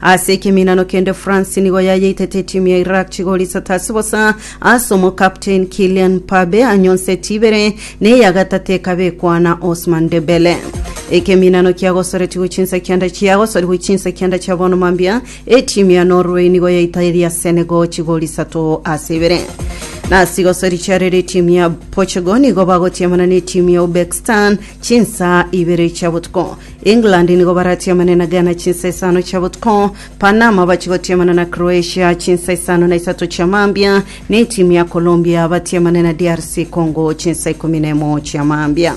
Ase ekeminano kende France nigo yayeitete etimu ya Iraq chigori isato ase bosa ase omokapteni Kylian Mbappe anyonseti ibere na eya gatato ekabekwa na Ousmane Dembele. Ekeminano kiagosoretigwe chinsa kianda kiagosorigwe chinsa kianda chia bono mambia etimu ya Norway nigo yaitaeria Senegal chigori isato ase ibere. Nasi igosori chiarere etimu ya Portugal nigo bagotiamana na etimu ya Uzbekistan chinsa ibere chia botuko. England nigo baratiamane na Ghana chinsa isano chia botuko, Panama bachigotiamana na Croatia chinsa isano na isato chia mambia, na etimu ya Colombia batiamane na DRC Congo chinsa ikomi na emo chia mambia.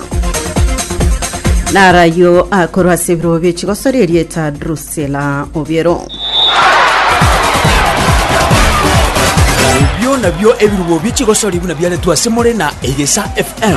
Naro ayio akorwa ase ebirogo bie chigosori erieta Drusilla Obiero. Ebio nabio ebirubo bie chigosori buna biaretwe ase more na Egesa FM.